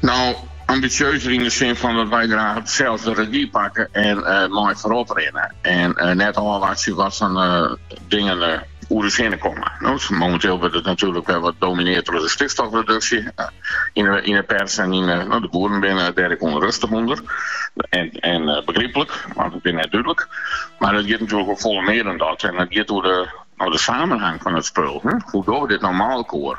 No, ambisjeuzer yn de sin fan dat wy graach sels de regi pakke en mei foarop rinne. En net ôfwachtsje wat foar dingen oer ús hinne komme. No, momenteel wurdt it natuerlik wer wat domineard troch de stikstofreduksje yn de pers en yn de. De boeren binne dêr ek ûnrustich ûnder. En begryplik, want it is net dúdlik. Mar it giet natuerlik oer folle mear as dat. En it giet oer de samenhang fan it spul. Hoe dogge we dit no mei elkoar?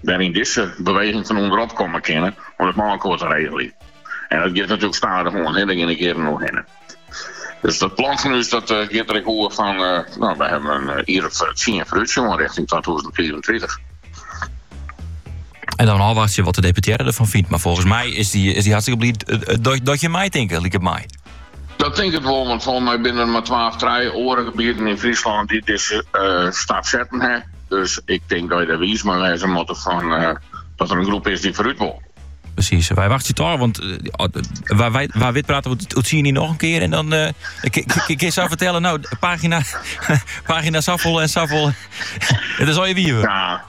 wêryn dizze beweging fan ûnderop komme kinne om it mei elkoar te regeljen. En dat giet natuerlik stadichoan, dêr geane jierren oerhinne. Dus dat plan fan ús dat, uh, giet der ek oer fan, uh, no, we hawwe in uh, jier of tsien foarútsjoen rjochting 2024. En dan ôfwachtsje wat de deputearre derfan fynt. Mar folgens my is dy, is dy hartstikke bliid eh, eh, dat, dat je meitinke, liket my. Dat tink ik wol, want folgens my binne der mar twa of trije oare gebieten yn Fryslân dy't dizze stap setten ha. Dus ik tink dat je der wiis mei wêze moatte fan dat der in groep is dy't foarút wol. Presys, wy wachtsje it ôf, want eh, wa, wy, wa wit prate we oer tsien jier noch in kear. En dan uh, kinne jo fertelle, no, pagina, pagina safolle en safolle. it is al je wieven. Ja,